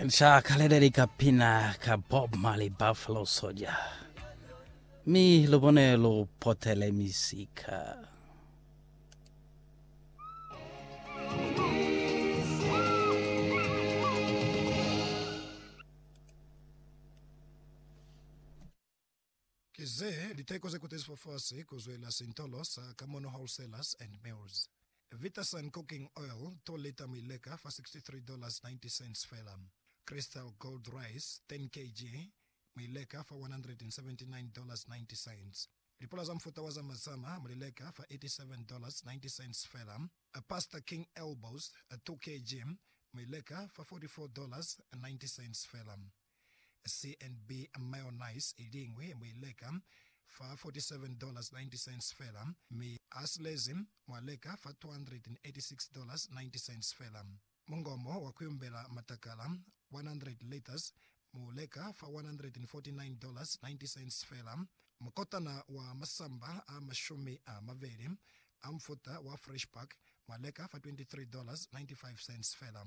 Nca kaleleli ka pina ka Bob Marley Buffalo Soldier. Mi lubone lu potele misika. Ki ze liteko ze kutezifwe fasi ku zwela sintolo sa Kamono Wholesalers and Mills. Vitasun Cooking Oil, 2 lita mi leka fa $63.90 fela. Crystal Gold Rice, 10 kg, mi leka fa $179.90. Lipula za mufuta wa za mazama mu li leka fa $87.90 fela. Pasta King Elbows, 2 kg, mi leka fa $44.90 fela. CNB mayonnaise i liñwi mu i leka fa $47.90 fela, mi a silezi mwa leka fa $286.90 fela. Mungomo wa ku yumbela matakala, 100 litres, mu leka fa $149.90 fela. Mukotana wa masamba a mashumi a mabeli a mufuta wa Fresh Pack mwa leka fa $23.95 fela.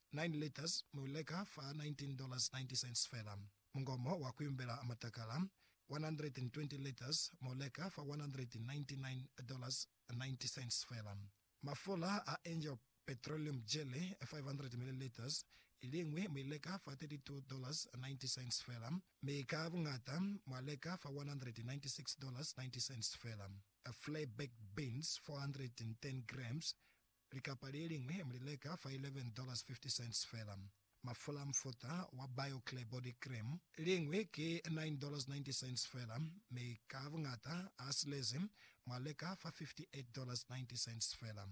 Nine litres mu i leka fa $19.90 fela. Mungomo wa ku yumbela matakala, 120 litres mu leka fa $199.90 fela. Mafula a Angel Petroleum Jelly, 500 millilitres, i liñwi mu i leka fa $32.90 fela, mi ka buñata mwa leka fa $196.90 fela. Flair Baked Beans, 410 grams, Likapa le liñwi mu li leka fa $11.50 fela. Mafula a mufuta wa Bio-Clear Body Cream, liñwi ki $9.90 fela, mi ka buñata a silezi mwa leka fa $58.90 fela.